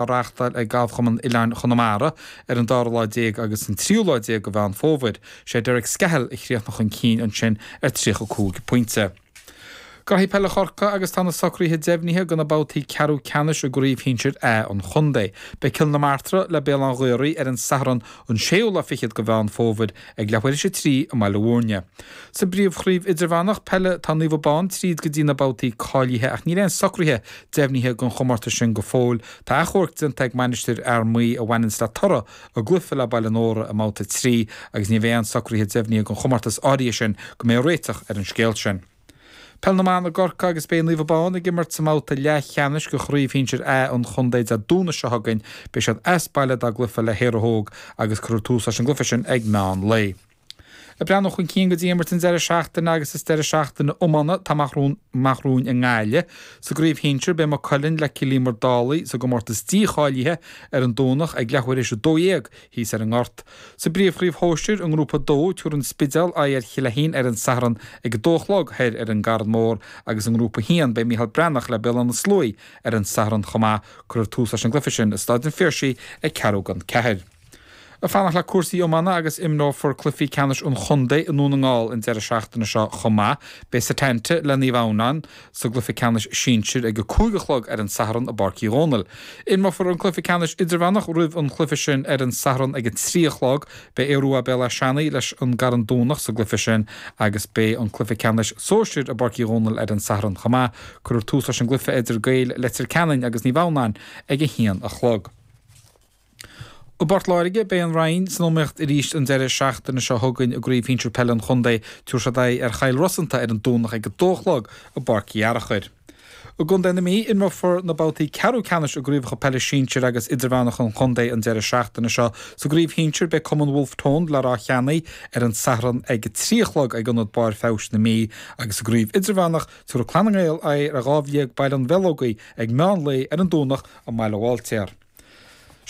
a reáchtáil ag Galfchumann Oileáin Chonamara ar an dara lá déag agus an tríú lá déag de Mheán Fómhair. Sé Derek Scahill a chríochnaigh chun cinn ansin ar tríocha cúig pointe. Cluichí Peile Chorcaí agus tá na socruithe deimhnithe do na babhtaí ceathrú ceannais i gCraobh Shinsir A an Chontae. Beidh Cill na Martra le Béal Átha an Ghaorthaidh ar an Satharn an séú lá fichead de Mheán Fómhair ag leathuair théis a 3 i mBaile Mhúirne. Sa bpríomhchraobh idirmheánach peile tá Naomh Abán tríd go dtí na babhtaí cáilithe ach níl aon socruithe deimhnithe don chomórtas sin go fóill. Tá athchomharc déanta ag Mainistir Fhear Maí a bhaineanns le toradh a gcluife le Baile Nóra i mbabhta 3 agus ní bheidh aon socruithe deimhnithe don chomórtas áirithe sin go mbeidh réiteach ar an scéal sin. Peil na mBan i gCorcaigh agus beidh Naomh Abán ag imirt sa mbabhta leathcheannais de Chraobh Shinsir A an Chontae Dé Domhnaigh seo chugainn. Beidh siad as baile dá gcluiche le hÉire Óg agus cuirfear tús leis an gcluiche sin ag meán lae. Ag breathnú chun cinn go dtí imirt an deireadh seachtaine agus is deireadh seachtaine iomána atá amach romhainn i nGaillimh. Sa gcraobh shinsir, beidh Maigh Cuilinn le Cill Íomair Dálaigh sa gcomórtas dícháilithe ar an Domhnach ag leathuair théis a dó dhéag, Thíos ar an nGort, sa bpríomhchraobh shóisir, i nGrúpa 2, tabharfaidh an Spidéal aghaidh ar Chill Fheichín ar an Satharn ag a dó a chlog, thoir ar an gCarn Mór agus i nGrúpa 1, beidh Micheál Breathnach le Béal Átha na Sluaighe ar an Satharn chomh maith. Cuirfear tús leis an gcluiche sin i Stáid an Phiarsaigh ag ceathrú don ceathair. Ag fanacht le cúrsaí iomána agus imreofar cluichí ceannais an chontae i nDún na nGall an deireadh seachtaine seo chomh maith. Beidh Setanta le Naomh Adhamhnán, sa gcluiche ceannais sinsir ag a cúig a chlog ar an Satharn i bPáirc Uí Dhónaill. Imreofar an cluiche ceannais idirmheánach roimh an gcluiche sin ar an Satharn ag a trí a chlog. Beidh Aodh Rua Béal Átha Seanaidh leis an gCarn Domhnach sa gcluiche sin agus beidh an cluiche ceannais sóisir i bPáirc Uí Dhónaill ar an Satharn chomh maith. Cuirfear tús leis an gcluiche idir Ghaeil Leitir Ceanainn agus Naomh Adhamhnáin ag a haon a chlog. I bPort Láirge, beidh an Rinn san iomaíocht arís an deireadh seachtaine seo chugainn i gCraobh Shinsir Peile an Chontae. Tabharfaidh siad aghaidh ar Chill Rosanta ar an Domhnach ag 2 a chlog i bPáirc Uí Fhearachair. I gcontae na Mí, imreofar na babhtaí ceathrú ceannais i gCraobhacha Peile Sinsir agus Idirmheánacha an Chontae an deireadh seachtaine seo. Sa gCraobh Shinsir, beidh cumann Wolfe Tone, le Ráth Cheannaigh ar an Satharn ag 3 a chlog ag Ionad Barr Feabhais na Mí, agus sa gCraobh Idirmheánach, tabharfaidh Clann na nGael aghaidh ar Dhamhliag Baile an Bheileogaigh ag meán lae ar an Domhnach i mBaile Bháiltéar.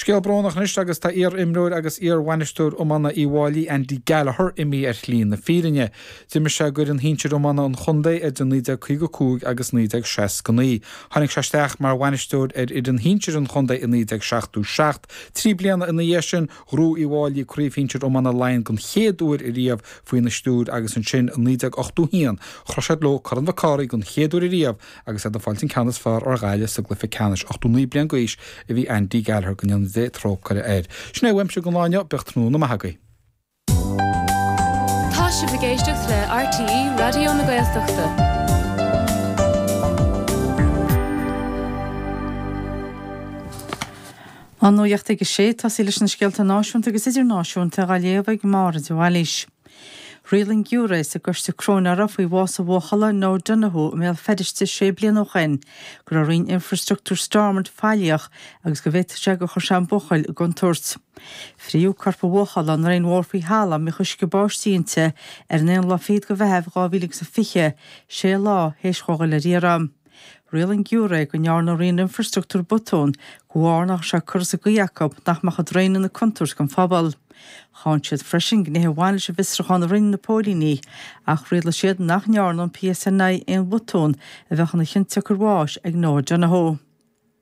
Scéal brónach anois agus tá iar-imreoir agus iar-bhainisteoir iomána Uíbh Fhailí, Andy Gallagher, imithe ar shlí na fírinne. D'imir sé d'fhoireann shinsir iomána an chontae idir 1955 agus 1969. Tháinig sé isteach mar bhainisteoir ar fhoireann shinsir an chontae i 1977. Trí bliana ina dhiaidh sin, ghnóthaigh Uíbh Fhailí Craobh Shinsir Iomána Laighean den chéad uair ariamh faoina stiúir agus ansin i 1981, chroch siad leo Corn Mhic Cárthaigh den chéad uair ariamh Agus é ag fáil an ceann is fearr ar Ghaillimh sa gcluiche ceannais, 89 bliain d'aois a bhí Andy Gallagher go ndéana Dia trócaire air. Sin é uaimse don lá inniu, bíodh tráthnóna maith agaibh. Tá sibh ag éisteacht le RTÉ Raidió na Gaeltachta. An Nuacht ag a 6, tosaí leis na scéalta náisiúnta agus idirnáisiúnta, á léamh ag Máire de Bhailís. Riail an giúiré sa gcoiste cróineara faoi bhás an bhuachalla Noah Donohoe i mBéal Feirste sé bliana ó shin go raibh roinn infreastruchtúr Stormont faillíoch agus go bhféadfadh sé gur chuir sé an buachaill i gcontúirt. Frítheadh corp an bhuachalla i ndraein mhór faoi thalamh, a mbíodh uisce báistí inti ar an aon lá fichead de Mheitheamh 2020, sé lá théis dhó dhul ar iarraidh. Riail an giúiré go ndearna Roinn Infreastruchtúr botúin de bharr nach raibh sé curtha sa gcaoi acu nach mbeadh an draein ina contúirt don phobal. Cháin siad freisin gnéithe a bhain leis an bhfiosrúchán a rinne na póilíní ach rialaigh siad nach ndearna an PSNI aon bhotún a bheadh ina chionsiocair bháis ag Noah Donohoe.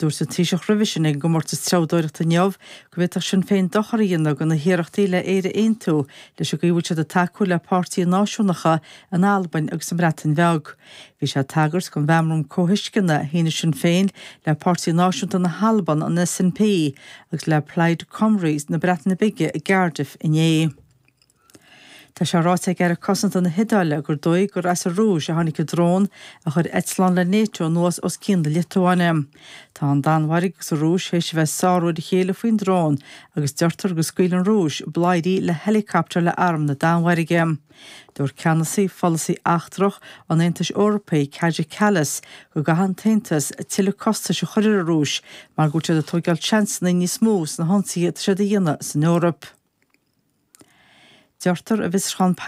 Dúirt an Taoiseach roimh a shé ag an gcomórtas treabhdóireachta inniu go bhféadfadh Sinn Féin dochar a dhéanamh do na hiarrachtaí le Éire a aontú leis an gcaoi a bhfuil siad ag tacú le páirtithe náisiúnacha in Albain agus sa mBreatain Bheag. Bhí sé ag tagairt don mheabhrán comhthuisceana a shínigh Sinn Féin le Páirtí Náisiúnta na hAlban, an SNP, agus le Plaid Cymru na Breataine Bige i gCardiff inné. Tá sé ráite ag Aire Cosanta na hIodáile gur dóigh gur as an Rúis a tháinig an drón a chuir eitleán le Nato anuas os cionn na Liotuáine. Tá an Danmhairg agus an Rúis théis a bheith ag sárú ar a chéile faoin drón agus deirtear go scaoil an Rúis bladhairí le héileacaptar le arm na Danmhairge. Dúirt ceannasaí pholasaí eachtrach an Aontais Eorpaigh, Kaja Kallas, go gcaithfidh an tAontas tuilleadh costais a chur ar an Rúis mar go bhfuil siad ag tóigeáil seansanna níos mó sna hionsaithe atá siad a dhéanamh san Eoraip. Deirtear i bhfiosrúchán